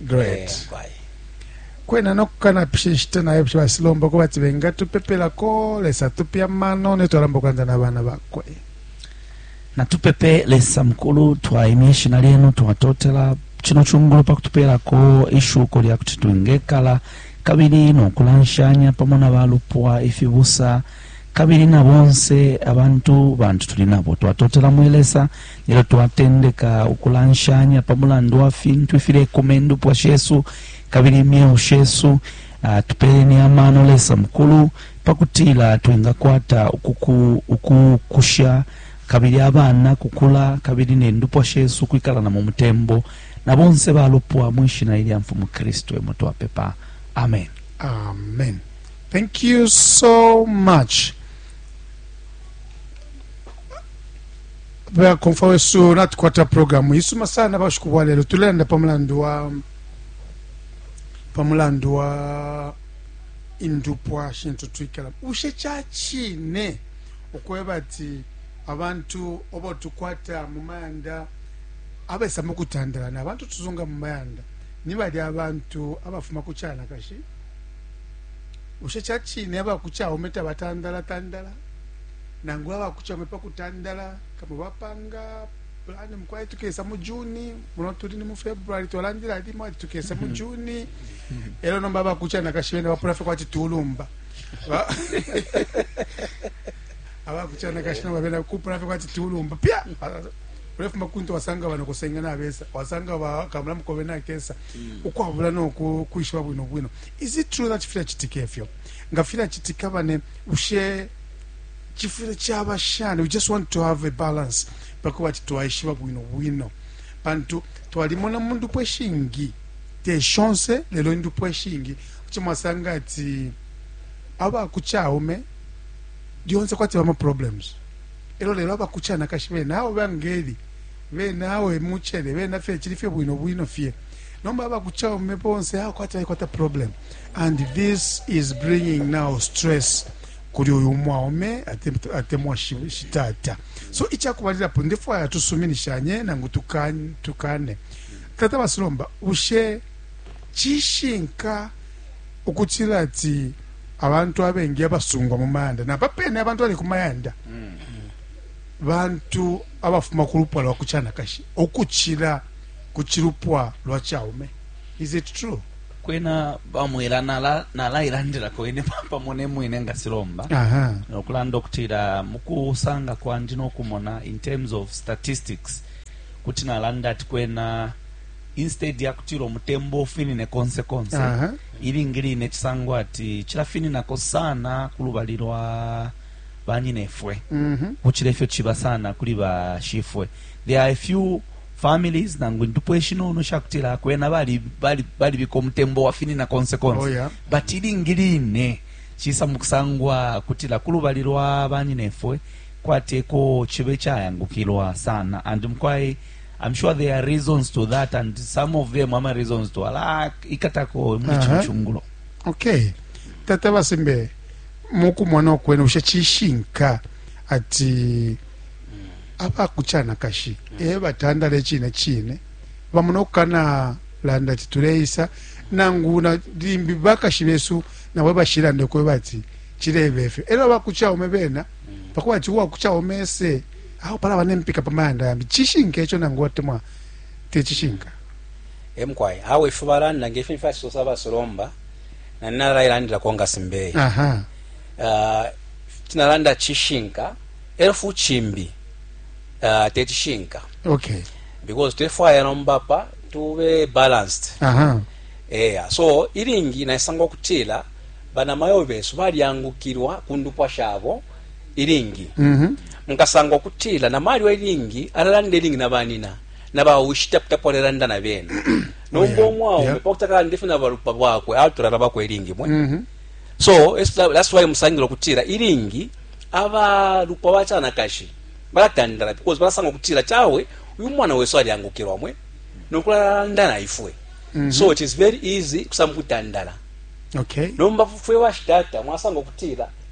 great eh, kwena nokukanapisha inshita nayo psha basilomba ko bati bengatupepelako lesa tupe amano netwalamba okulanda na bana bakwe natupepe lesa mukulu twaimya ishina lyenu twatotela kino kyungulu pa kutupeerako ishuko lya kuti twingekala kabiri n'okulanshanya pamo na balupwa ifibusa Kabili na bonse abantu bantu tuli nabo, twatotela mwe Lesa ilyo twatendeka ukulanshanya pa mulandu wa fintu ifilekuma indupwa shesu kabili imyeo shesu. Ah, tupeleni amano, Lesa Mukulu, pa kutila twingakwata ukukusha kabili abana kukula kabili ne ndupwa shesu kwikala na mu mutembo na bonse balupwa. Mwi shina ilya Mfumu Kristu emo twapepa. Amen. Amen. Thank you so much. bakomfa wesu natukwata programu isuma sana bashiku bwa lelo tulenda pa mulandu wa pa mulandu wa indupwa shintu twikala ushe cha chine ukweba ati abantu obo tukwata mu mayanda abesa mu kutandalana abantu tuzunga mu mayanda ni bali abantu abafuma ku chanakashi Bushe ca cine aba ku Chaume tabatandala-tandala? Nangu aba ku Chaume pa kutandala, kamo bapanga pulani mukwai tukesa mu Juni, muno tuli ni mu February, twalandila limo ati tukesa mu Juni. Elo nomba aba ku Chanakashi bena bapula fye kwati tulumba. Ba- Aba ku Chanakashi nomba bena kupula fye kwati tulumba. Pya! ulefuma kuntu wasanga bano kusenge nabesa wasanga bakamula mukobe nakesa mm. ukwabula noku kwishiba bwino bwino is it true that fila chitika efyo nga fila chitika bane ushe chifile chaba shani we just want to have a balance pako bati twaishiba bwino bwino pantu twalimona mundu pweshingi te chance lelo ndu pweshingi chimwasanga ati aba kuchaume dionse kwati bama problems Elo lelo abakucanakashi bena awe bangeli, bena awe mucele, bena fye cili fye bwino bwino fye. Nomba abakucaume bonse awe kwati baikwata problem. And this is bringing now stress kuli uyu mwaume atemwa shitata. So icakubalilapo ndefwaya tusuminishanye nangu tukane. Tata Basilomba, bushe cishinka ukucila ati abantu abengi abasungwa mu mayanda napa pene abantu bali ku mayanda bantu abafuma ku lupwa lwa kucanakashi ukucila ku cilupwa lwa caume is it true kwena bamwela nalailandila kwene pamo nemwine nga silomba nokulanda okutila mukusanga kwandi nokumona in terms of statistics kuti nalanda ati kwena instead ya kutila umutembo ufinine konse konse uh -huh. ilingi line cisangwa ati cilafininako sana ku lubali lwa banyinefwe mm -hmm. kucila ifyo ciba sana kuli bashifwe there are a few families nangu indupwa ishinono shakutila kwena balibika bali, bali umutembo wafinina konse konse oh, yeah. but ilingi line cisa mukusangwa kutila ku lubali lwa banyinefwe kwateko cibe cayangukilwa sana and mukwayi I'm sure there are reasons to that and some of them ama reasons to ala ikatako muli uh -huh. chungulo okay tata basembe mukumona okwene ushe chishinka ati apa kuchana kashi mm. e batandale chine chine bamuna okukana landa ati tuleisa nangu na limbi bakashi besu nawe bashilande kweba ati chilebefe elo bakuchaume bena mm. pakuba ati uwakuchaume ese Awe palaba ne mpika pa mayanda yambi. Cishinka ico nangu atemwa te cishinka? E mukwai. Awe ifyo balanda nge fi ni fyacisosa ba Solomba, na ine nalailandilako nga Simbeye. Aha. Ico nalanda cishinka e lyo futi cimbi te cishinka. Okay. Because tulefwaya nomba apa tube balanced. Aha. Eya. So ilingi naisanga ukutila banamayo besu balyangukilwa ku ndupwa shabo. ilingi mhm. mukasanga ukutila na malyo ilingi alalanda ilingi na banina na baushi taputapo alalanda na bena nomba oh, omwaume pakutakala ndife na balupa bwakwe atulala bakwe ilingi mwe mhm. so that's why musangila ukutila ilingi abalupa bacanakashi balatandala because balasanga ukutila cawe uyu mwana wesu alyangukirwa mwe nokulalanda na ifwe mhm. so it is very easy kusamba kutandala okay nomba fwe bashitata mwasanga ukutila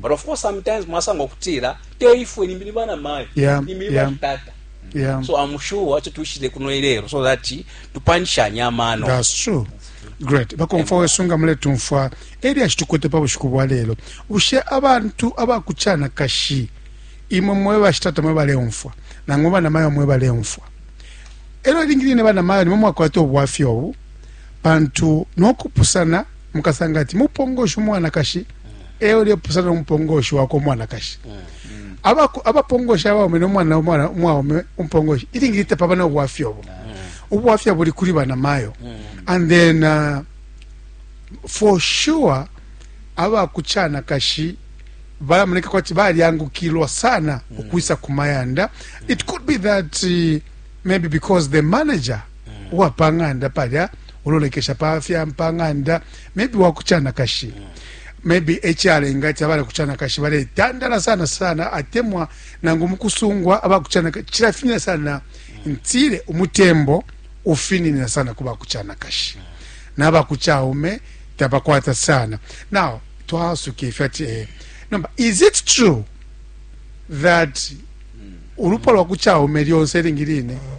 but of course sometimes mwasanga okutila te ifwe nimbi ni bana mayo yeah, nimbi ni yeah. batata yeah. so i'm sure acho tushile kuno ilero so that tupanshanya amano that's true great bakomfa wesu nga muletumfwa eri ashitukwete pa bushiku bwa lero bushe abantu abakuchana kashi imwe mwe bashitata mwe baleumfwa nangu bana mayo mwe baleumfwa ero ilingi line bana mayo nimwe mwakwata obwafya obu pantu nokupusana mukasanga ati mupongoshi umwanakashi e ulepusana no mupongoshi wakwe umwanakashi abapongoshi abaume nomwana umwaume umupongoshi ilingi litapaba na ubwafya obo ubwafya buli kuli banamayo and then uh, for sure abakuchanakashi balamoneka kwati balyangukilwa sana mm. ukwisa kumayanda it could be that uh, maybe because the manager mm. uwa pa ng'anda palya ulolekesha pa fya pa ng'anda maybe wa kucanakashi mm. maybe echalenga ti abala kucanakashi baletandala sana sana atemwa nangu mukusungwa abakucanaka chilafinina sana mm. ntile umutembo ufininina sana kuba kucanakashi mm. naba kuchaume tabakwata sana now twasuka ifyo ati eh, nomba is it true that mm. ulupwa lwa kuchaume lyonse lingi line mm.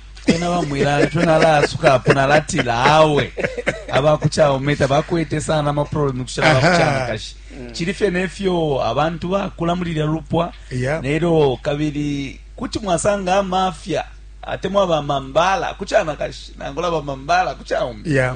ena bamwila ico nalaasuka apo nalatila awe abakucaume tabakwete sana amaproblemu kucila bakucanakashi cili fye nefyo abantu bakula muli lya lupwa yeah. nelyo kabili kuti mwasanga amafya atemwa bamambala kucanakashi nangula bamambala kucaume yeah.